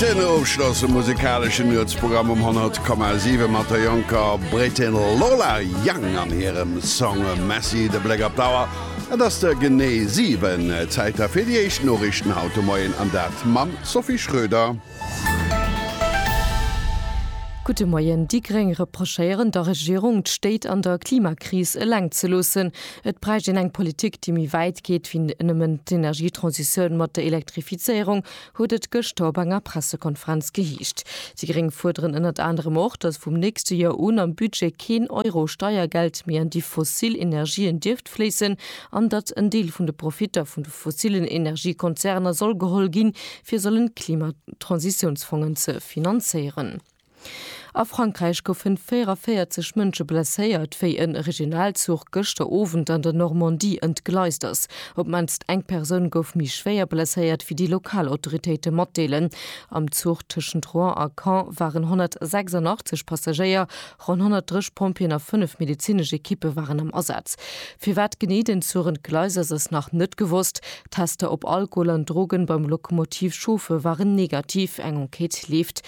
Den ofschlosse musekaleschen Nuetsprogramm um 100,7 mat der jonker Brittin Lola Young an hirem Song Messy. De Bléck op d'Auer, et ass de genee 7 Zäiter fir déi éischt Noriichten haut de Moien an dat mam Sophie Schröder. Gudde Moien. Déi gréng reprochéieren der Regierung, d'Stéit an der Klimakris eleng ze loossen. Et bräicht een eng Politik, déi méi wäit geet wéi nëmmen d'Energietransitioun mat der Elektrifizéierung, huet et gëschter op enger Pressekonferenz geheescht. Déi Gréng fuerderen ënnert anerem och, datt vum nächste Joer un am Budget keen Euro Steiergeld méi an déi fossil Energien dierft fléissen an datt en Deel vun de Profitter vun de fossillen Energiekonzerner soll geholl ginn, fir sollen d'Klimatransitiounsfongen ze finanzéieren. A Frankräich goufen 44 Mënsche blesséiert, wéi e Regionalzuch gëschter Owend an der Normandie entgleist ass. Op d'mannst eng Persoun gouf méi schwéier blesséiert, wéi déi lokal Autoritéite matdeelen. Am Zuch tëschent Rouen a Caen waren 186 Passagéier, ronn 130 Pompjeeën a fënnef medezinesch Ekippe waren am Asaz. Firwat genee den Zuch entgleist ass, ass nach net gewosst. D'Tester op Alkohol an Drogen beim Lokomotivchauffer waren negativ. Eng Enquête leeft.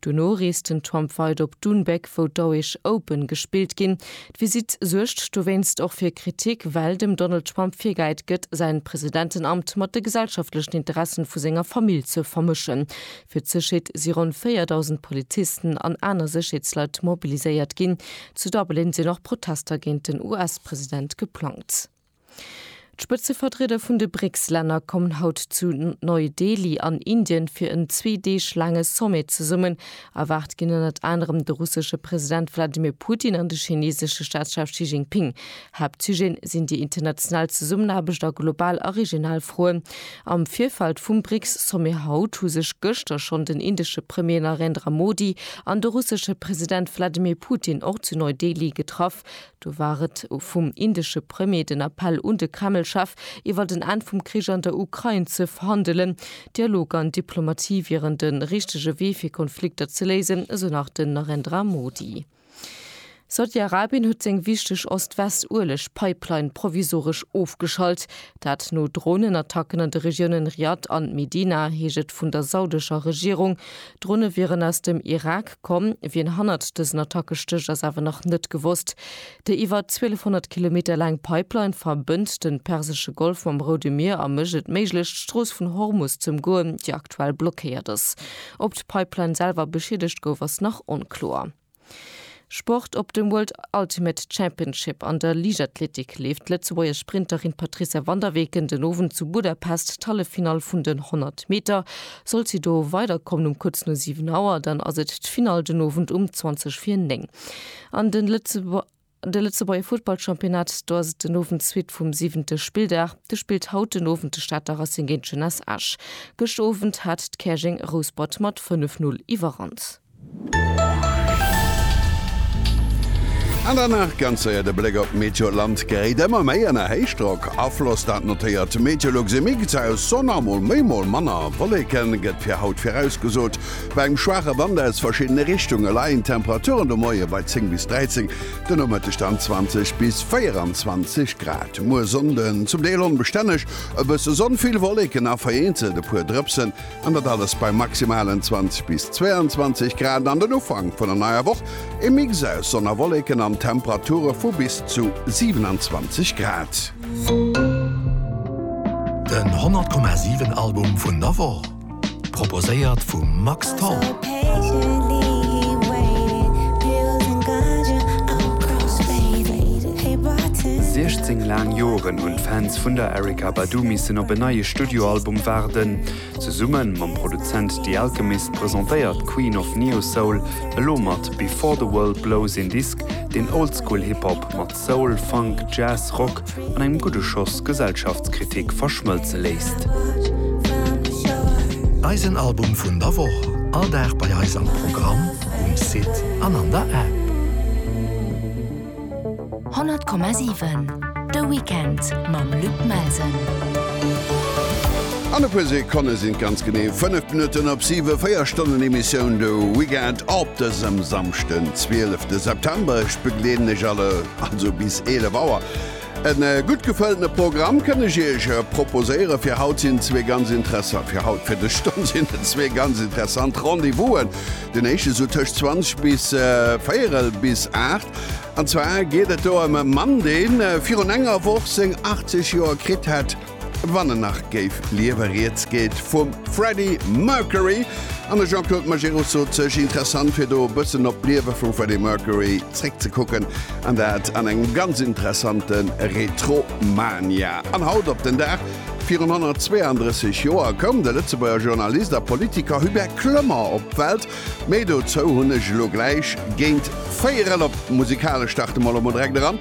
Dono reest den Trump weider op Doonbeg, wou d'Auish Open gespillt ginn. D'Visitt suergt dowéinst och fir Kritik, well dem Donald Trump virgehäit gëtt, säin Presidentenamt mat de gesellschaftlechen Interessen vu senger Famill ze vermëschen. Fir d'Sécherheet si ronn 4.000 Polizisten an aner Sécherheetsleit mobiliséiert ginn. Zu Dublin sinn och Protester géint den US-President geplangt. D'Spëtzevertrieder vun de BRICS-Länner kommen haut zu Neu-Delhi an Indien fir en zwee Deeg laange Sommet zesummen. Erwaart ginn ënnert anerem de russesche President Wladimir Putin an de chineesesche Staatschef Xi Jinping. Haaptsujeten sinn déi international Zesummenaarbecht a global a regional Froen. Am Virfeld vum BRICS-Sommet haut hu sech gëschter schonn den indesche Premier Narendra Modi an de russesche President Wladimir Putin och zu Neu-Delhi getraff. Do war et vum indesche Premier den Appell un de Kreml-Chef, iwwert en Enn vum Krich an der Ukrain ze verhandelen. Dialog an Diplomatie wieren de richtege Wee fir Konflikter ze léisen, esou nach den Narendra Modi. Saudi-Arabien huet seng wichteg Ost-West-Ueleg-Pipeline provisoresch ofgeschalt. Dat no Dronenattacken an de Regiounen Riad an Medina, heescht et vun der saudescher Regierung. D'Drone wieren aus dem Irak komm. Wien hannert dësen Attacke stécht, ass awer nach net gewosst. Déi iwwer 1200 Kilometer laang Pipeline verbënnt den persesche Golf mam Roude Mier a mécht et méiglech, d'Strooss vun Hormus z'ëmgoen, déi aktuell blockéiert ass. Ob d'Pipeline selwer beschiedegt gouf, ass nach onkloer. Sport, Op dem World Ultimate Championship an der Liichtathletik leeft d'Lëtzebuerger Sprinterin Patrizia van der Weken den Owend zu Budapest d'Halleffinall vun den 100 Meter. Sollt si do weiderkommen um kuerz no 7 Auer, dann ass et d'Finall den Owend um 20 vir 9. An den Lëtzebuerger. De Lëtzebuerger Futtballchampionnat, do ass et den Owend d'Suite vum siwente Spilldag. Do spillt haut den Owend de Stater Racing géint d'Jeunesse Esch. Gëscht Owend hat d'Käerjeng Rouspert mat 5, 0 Iwwerhand. An dann nach ganz séier de Bléck op d'Meteoland. Geréit ëmmer méi ënner Héichdrock Afloss, dat notéiert d'Météolux. E Mix aus Sonn a mol méi mol manner Wolleken gëtt fir haut virausgesot. Bei engem schwaache Wand aus verschiddene Richtunge leien d'Temperaturen de Moie bei 10 bis 13, de Nomëtteg dann 20 bis 24 Grad. Muer Sonnden zum Deel onbestänneg, e bësse Sonn, vill Wolleken a vereenzelt e puer Drëpsen, an dat alles bei maximalen 20 bis 22 Grad. An den Ufank vun der neier Woch, e Mix aus Sonn a Wolleken an Temperature vu bis zu 27 Grad. Den 100,7 Album vun der Woch. Proposéiert vum Max Tholl. Siechzéng laang Joren hunn d'Fans vun der Erykah Badu missen op en neie Studioalbum waarden. Zesumme mam Produzent The Alchemist presentéiert d'Queen of Neo-Soul elo mat Before the World Blows een Disk, deen Oldschool-Hip-Hop mat Soul, Funk, Jazz, Rock an engem gudde Schoss Gesellschaftskritik verschmëlze léisst. Eisen Album vun der Woch, all Dag bei eis am Programm, um Site an an der App. 100,7 De Weekend mam Luc Melsen. An e puer Sekonne sinn et ganz genee 5 Minutten op 7, 4 Stonnen Emissioun de Weekend op dësem Samschden, 12 de September. begleeden iech alle, also bis 11 Auer. En gutt gefëlltene Programm kënn ech iech proposéieren. Fir haut sinn zwee ganz interessant, fir haut, fir dës Stonn sinn et zwee ganz interessant Rendez-Vousen. Den éischte sou tëscht 20 bis véierel bis aacht. An zwar geet et do ëm e Mann, dee virun enger Woch seng 80 Joer kritt hätt. Wann en nach géif liewen. Rieds geet vum Freddie Mercury an de Jean-Claude Majerus sot sech interessant fir do e bëssen op d'Liewe vum Freddie Mercury zréckzekucken an dat an engem ganz interessante Retromania. An haut op den Dag virun 132 Joer koum de Lëtzebuerger Journalist a Politiker Hubert Kloemer op d'Welt. Méi dozou hunn ech elo gläich géint véierel. Op d'musikalesch starte mer elo mol direkt eran.